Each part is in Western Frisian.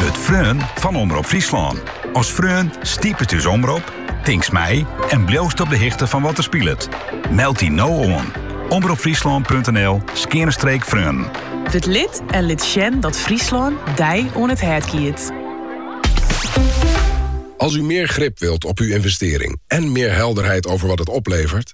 Wurd freon fan Omrop Fryslân. As freon stipet ús omrop, tinkst mei en bliuwst op de hichte fan wat der spilet. Meld dy no oan, omropfryslân.nl skeane streek freon. Wurd lid en lit sjen dat Fryslân dy oan it hert giet. Als u meer grip wilt op uw investering en meer helderheid over wat het oplevert,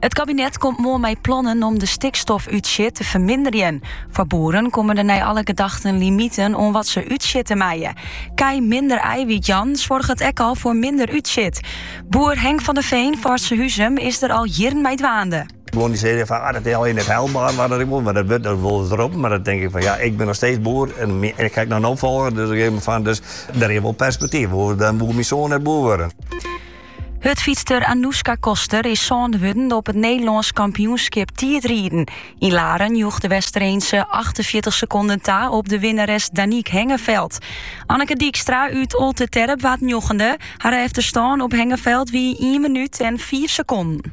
It kabinet komt moarn mei plannen om de stikstofútstjit te ferminderjen. Foar boeren komme der nei alle gedachten limiten oan wat se útstjitte meie. Kij minder aaiwyt jaan soarget ek al foar minder útstjit. Boer Henk van der Veen fan Surhuzum is der al jierren mei dwaande. Guon dy seine fan ah dat is al net haalber wat ik wol, mar dat wurdt wol wat roppen. Mar dan tink ik fan ja, ik bin noch steeds boer en ik krij noch in opfolger, dus ik tink fan dus der is wol perspektyf. Oars dan woe myn soan net boer wurde. Hurdfytster Anouska Koster is sânde wurden op it Nederlânsk kampioenskip tiidrieden. Yn Laren joech de Westereenske 48 sekonden ta op de winneres Daniek Hengeveld. Anneke Dijkstra út Olterterp waard njoggende. Har efterstân op Hengeveld wie ien minút en fiif sekonden.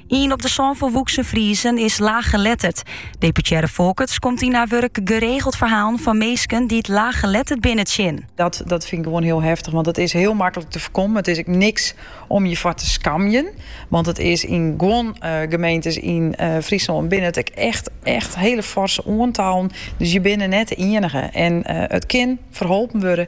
Ien op de sân folwoeksen Friezen is laaggeletterd. Deputearre Folkerts komt yn har wurk geregeld ferhalen fan minsken dy't laaggeletterd binne tsjin. Dat, dat fyn ik gewoan hiel heftich, want it is hiel maklik te foarkommen. It is ek niks om je foar te skamjen, want it is yn guon gemeentes yn Fryslân binne it ek echt, echt hiele foarse oantallen. Dus je binne net de ienige en it kin ferholpen wurde.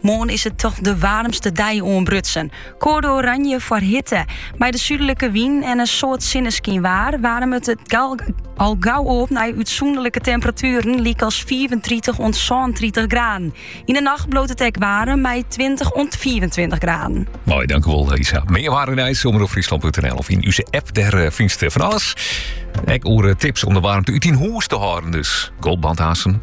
Moarn is it toch de waarmste dei oanbrutsen. Koade oranje foar hitte. Mei de súdlike wyn en in soad sinneskyn waar waarmet it al gau op nei útsûnderlike temperatueren lykas 35 oant 36 graden. Yn de nacht bliuwt it ek waarm mei 20 oant 25 graden. Moai, dankewol Lisa. Mear waar en nijs, omropfryslân.nl of yn ús app, dêr eh, fynst fan alles. Ek oer eh, tips om de waarmte út 'e hûs te hâlden dus. Goldbandhazen,